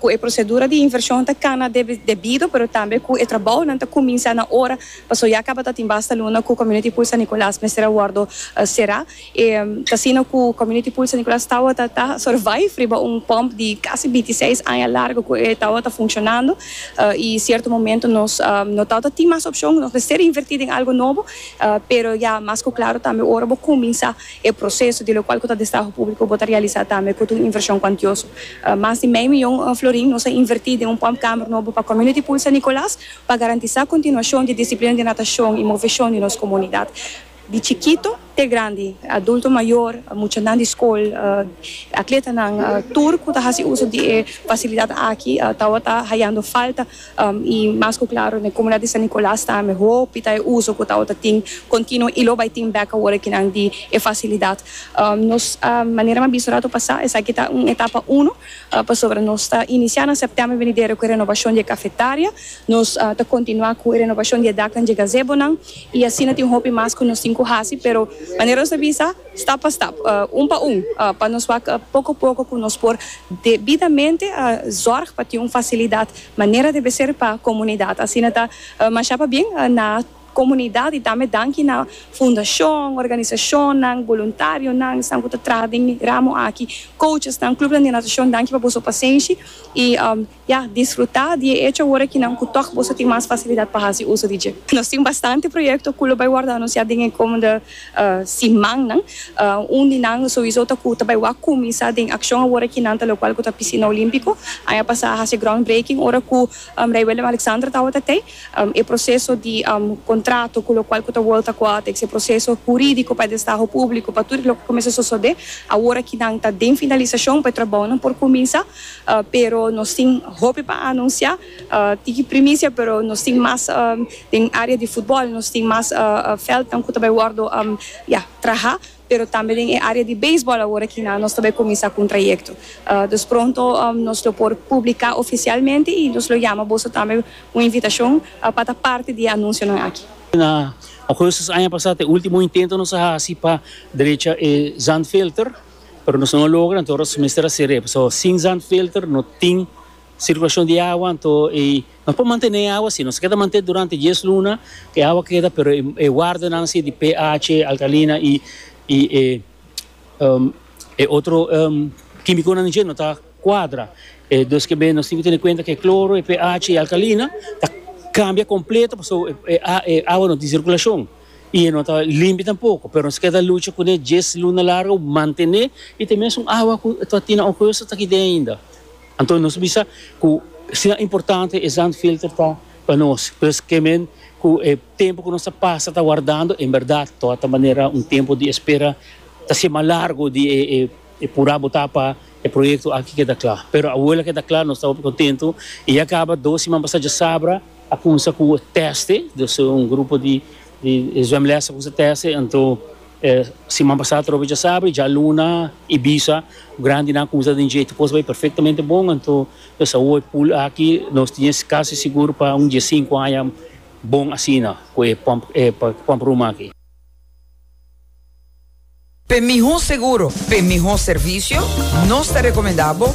Ku e prosedura di invershon ta kana debido pero tambe ku e trabounan ta kuminsá na ora pasobra ya tabata tin basta luna ku Community Pool San Nicolas mester a wòrdu será. E ta asina ku Community Pool San Nicolas tabata ta survive riba un pòmp di kasi binti seis aña largu ku e tabata funshonandu i sierto momento nos no tabata tin mas opshon nos mester invertí den algu nobo pero ya mas ku klaru tambe ora bo kuminsá E proseso di lokual ku ta destaho públiko bo ta realisá tambe kut un invershon kuantioso. Mas di mei mion florin nos a invertí den un pump kamer nobo pa Community Pool San Nicolas pa garantisá kontinuashon di disiplina di natashon i moveshon di nos komunidat di chikito te grandi, adulto mayor, muchanan di skol, atletanan tur ku ta hasi uso di e fasilidat aki tabata hayando falta. i mas ku klaro na e komunidat di San Nikolas ta ambe hopi ta e uso ku ta ota tin kontinuo i lo bai tin bek awor ki nan di e fasilidat nos manera mi a bisa rato pasá esaki ta un etapa uno pasobra nos ta inisiá na sèptèmber venidero ku e renobashon di e kafetaria nos ta kontinuá ku e renobashon di e daknan di e gazebonan i asina tin hopi mas ku nos tin ku hasi pero manera nos a bisa stap pa stap un pa un pa nos wak poko poko ku nos por debidamente zòrg pa tin un fasilidat Manera debe ser pa comunidad. Asina ta masha pabien na comunidad y tambe danki na fundacion, organisacionnan, voluntarionan esnan cu ta traha den e ramo aki, coachesnan, clubnan di natacion danki pa boso pasenshi y ya disfruta di e hecho awor aki nan cu tok boso tin mas facilidad pa haci uso di dje. Nos tin bastante proyecto cu lo bay wordo anuncia den e comende. simannan. Un di nan sowiso ta ku ta bai wak kuminsá den akshon aworakí nan ta lokual ku ta Pisina Olímpiko. Aña pasá a hasi groundbreaking ora ku Rei Willem Alexander tabata tei. E proseso di kontrato ku lokual ku ta World Aquatics, e proseso hurídiko pa e destaho públiko, pa tur loke kuminsá sosodé. Aworaki nan ta den finalisashon pa e trabounan por kuminsá, pero nos tin hopi pa anunsiá. Tiki primicia pero nos tin mas den area di futbol nos tin mas veldnan cu ta bay wordo ya traha pero tambe den e area di beisbol awor aki nan nos ta bay cuminsa cu un trayecto dus pronto nos lo por publica oficialmente y nos lo yama boso tambe un invitacion pa ta parti di e anuncionan aki. Na augustus aña pasa ta e ultimo intento nos a haci pa drecha e zandfilter pero nos no a logra anto aros mester haci rep so sin zandfilter no tin Circulacion di awa, anto e nos por mantene e awa si nos keda mantene durante dies luna e awa keda pero e wardenan si di pH, alkalina y y e e otro kimiconan di dje no ta cuadra e dos kebe nos tin ki tene cuenta ke cloro, e pH y alkalina ta cambia completo paso e e awa no tin circulacion y e no ta limpi tampoco pero nos keda lucha cune dies luna largo mantene y ta mesun awa cu ta tin nan oco yo so ta ki den ainda. Anto nos bisa cu sinan importante e zandfilter ta pa nos, pues ke men cu e tempo cu nos ta pasa ta wardando en berdad to a ta manera un tempo di espera ta haci mas largo di e pura bota pa e proyecto aki keda cla. Pero awo la keda cla nos ta hopi contento y ya caba dos siman pasa dje sabra a cumsa cu teste, dus un grupo di zwemles a cumsa teste anto. E siman pasá trobe djasabra y djaluna y bisa grandinan cuminsa den dje. Tu cos bay perfectamente bon, anto lo sa hoy pool aki nos tin es casi sigur pa un dje cinco aña bon asina cu e pump e pump room aki. P'e miho seguro, p'e miho servicio, nos ta recomenda bo